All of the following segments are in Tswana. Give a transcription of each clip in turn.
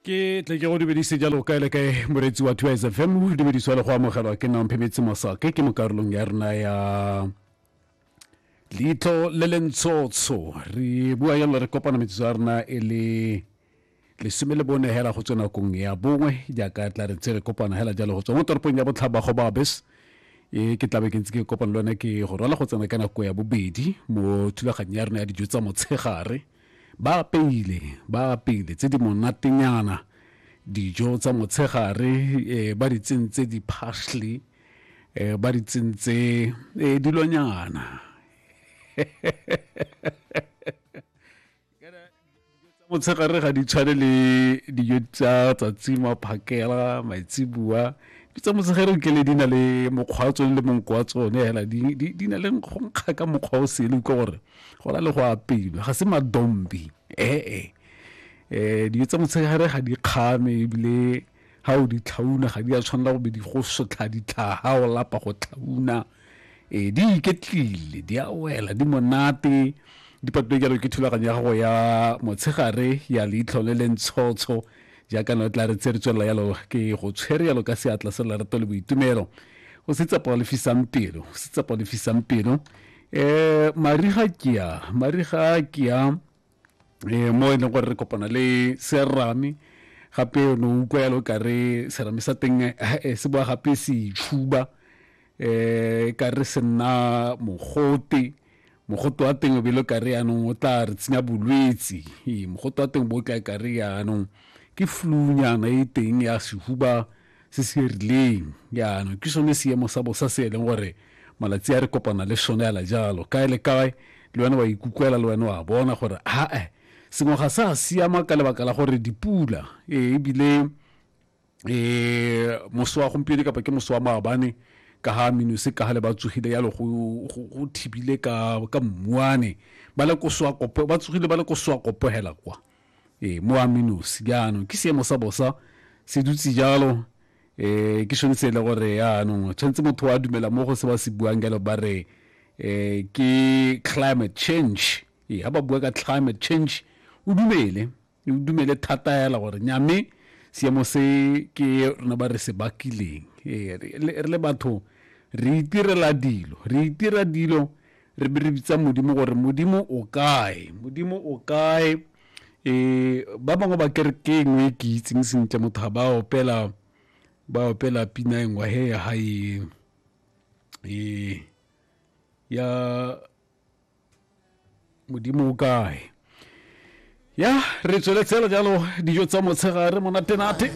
ke tle ke go dumedise jalo kae le kae moreetsi wa two sfm o dumedisiwa le go amogelwa ke nang phemetse masake ke mo karolong ya rena ya leitlho le le ntshotsho re bua jalo re kopana metsotso ya rena e le lesome le bone hela go tswe nakong ya bongwe jaaka tla re tse re kopana hela jalo go tswa mo toropong ya botlhaba go babes e ke tlabe ke ntse ke kopana le one ke go rwala go tsena ka nako ya bobedi mo thulaganyo ya rona ya dijo tsa motshegare Ba apeile, ba apeile tse di monatenyana, dijo tsa motshegare, eh, ba di tsentse di-parsley, eh, ba di tsentse eh, dilonyana. motshegare ga di tshwane le dijo tsa tsatsi maphakela maitsibua di tsa motshegare nke le di na le mokgwa wa tsone le monko wa tsone fela di na le nkgonkga ka mokgwa o sele utlwa gore go na le go apilwe ga se madombi ee um dijo tsa motshegare ga di kgame ebile ga o di tlhauna ga di a tshwanela go be di go sotlha ditlhaga o lapa go tlhauna um di iketlile di a wela di monate di patile jalo ke thulaganyo ya gago ya motshegare ya leitlho le le ntshotsho jaaka no tla re tse re tswelela yalo ke go tshwere yalo ka seatla se lerato le boitumelo o se tsepa o lefisang pelo o se tsepa o lefisang pelo um mariga kea mariga kea um eh, mo e leng gore re kopana le serame gape o ne o utlwa yalo ka re serame sa teng eh, eh, se boa gape se itšhuba um ka re se nna mogote mogote wa teng o belo ka re yaanong o tla re tsenya bolwetse mogote wa teng bo o tla ka re yaanong ke flunyana e teng ya sehuba se se rileng jaanong ke sone seemo sa bosa se e leng gore malatsi a re kopana le sone ala jalo kae le kae le wena wa ikukwela le wena wa bona gore aa sengwe ga sa siama ka lebaka la gore dipula e, ebile um e, moso wa gompieno kapa ke moso wa maabane ka ga minuse ka ga le ba tsogile yalo go thibile ka mmuane ba le kosoa kopo ba tsogile ba le kosoa kopo hela kwa ee mo ame nosi jaanong ke seemo sa bosa se dutse jalo um ke sone se e le gore yaanong tshwanetse motho wa dumela mo go se ba se buang jalo ba re um ke climate change ee ga ba bua ka climate change o dumele o dumele thata fela gore nyame seemo se ke rona ba re se bakileng ee re le batho re itirela dilo re itira dilo re be re bitsa modimo gore modimo o kae modimo o kae um ba bangwe ba kere ke engwe e ke itseng sentle motho ga ba opela ba opela pina engwe he ya ga e um ya modimo o kae ya re tsweletse le jalo dijo tsa motshegare monatenate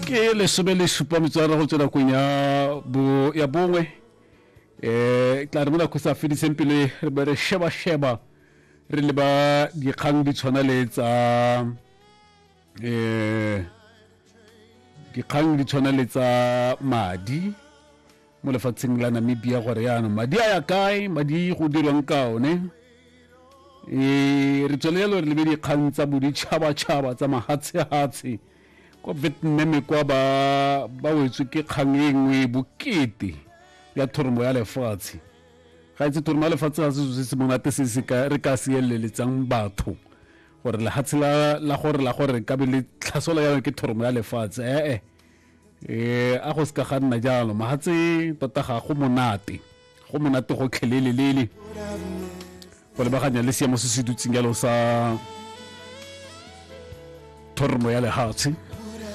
ke lesome le supa metswana go tswela kong ya bongwe um tla re mo nako sa fediseng pele re be re sheba-sheba re leba dikgang di tshwana le tsa eh dikgang di tshwana le tsa madi mo lefatsheng la namibia gore yaanong madi a ya kae madi go dirwang ka one um re tswelele gore lebe dikgang tsa boditšhabatšhaba tsa mahatshehatshe kwa vietnam kwa ba ba wetswe ke kgang e nngwe e bokete ya thoromo ya lefatshe ga itse thoromo ya lefatshe ga se se monate se re ka seeleletsang batho gore lehatshe la gore la gore ka be le tlhasolo ya ke thoromo ya lefatshe ee eh, eh. a go se ka ga nna jalo mahatse tota ga go monate go monate go tlhelelelele go lebaganya le seemo se se dutseng jalo sa thoromo ya lehatshe